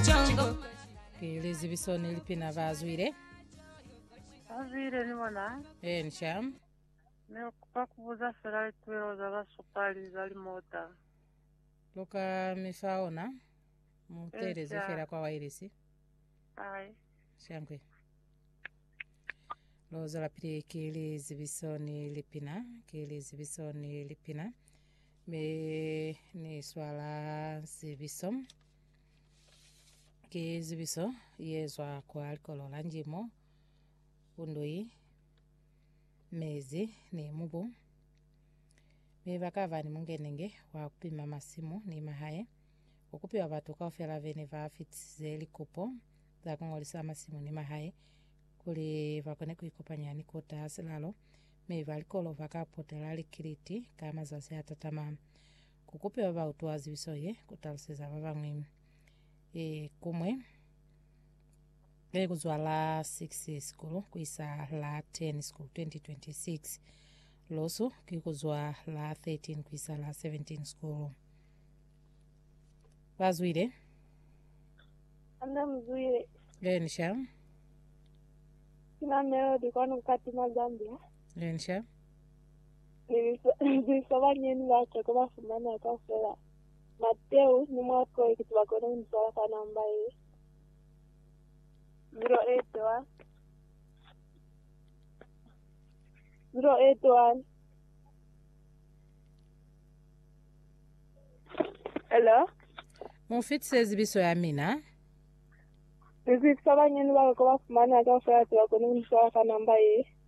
Jungle. Ke lizibiso ni lipina ba zwile. Azwile ni bona Ensha. ne kupa kubuza fela lituelo za basupali za limota. Luka mi fa ona. Mutelezi Ensha. fela kwa wailesi. Ai, Shankwe. Lozo la pili ke lizibiso ni lipina. Ke lizibiso ni lipina. Me ni swala zibiso. Ki zibiso ye zwa kwa likolo la njimo, kundwi, mezi ni mubu. Mi bakaba ni mungenenge wa kupima masimu ni mahae. Ku kupiwa batu kaufela bene ba fitisize likupo za kungolisa masimu ni mahae kuli bakone kuikopanya ni Kota Silalo, mi ba likolo baka potela likiliti ka mazazi atatama. Ku kupe ba ba utwa zibiso ye, ku taluseza ba bañwi e kumwe e ku zwa la 6 sikulu ku isa la 10 sikulu 2026. Losu ki ku zwa la 13 ku isa la 17 sikulu. Ba zwile. Anda mzwile Lensha, kina Melody kwanu kati ma Zambia. lensha. Zibiso banyeni ba Joko ba fumaneha kaufela. Mateu ni Marko i kiti ba koni ku ni zwala ka namba ye ziro eti wani, ziro eti wani. Hello? Mu fitise zibiso ya mina. Zibiso banyeni ba Joko ba fumaneha kaufela ti ba koni ku ni zwala ka namba ye.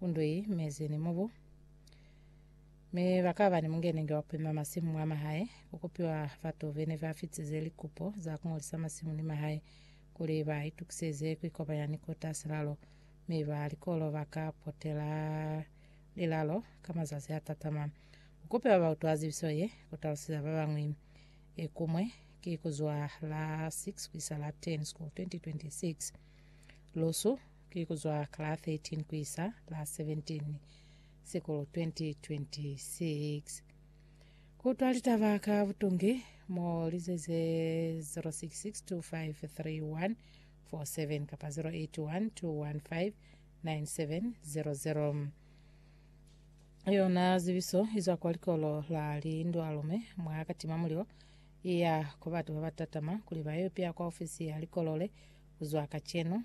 Undwi mezi ni mubu. Mi bakaba ni mungenenge wa kupima masimu mwa mahae, kukupiwa batu bene ba fitize likupo za kungolisa masimu ni mahae kuli ba itukiseze kuikopanya ni kota silalo, mi ba likolo baka potela lilalo ka mazazi a tatama. Kukupiwa bautu a zibiso ye, kutalusiza babañwi. Ekumwe ki kuzwa la 6 kuisa la 10 School 2026. Lusu Ki ku zwa ka la 13 ku isa la 17 Sikulu 2026 Ku utwa litaba ka butungi mo lize ze 0662531147 kapa 0812159700 Yona zibiso izwa kwa likolo la Lindwalume mwa Katimamulilo iya ku batu babatatama kuli bayo ipea kwa ofisi ya likolo le kuzwa kacenu.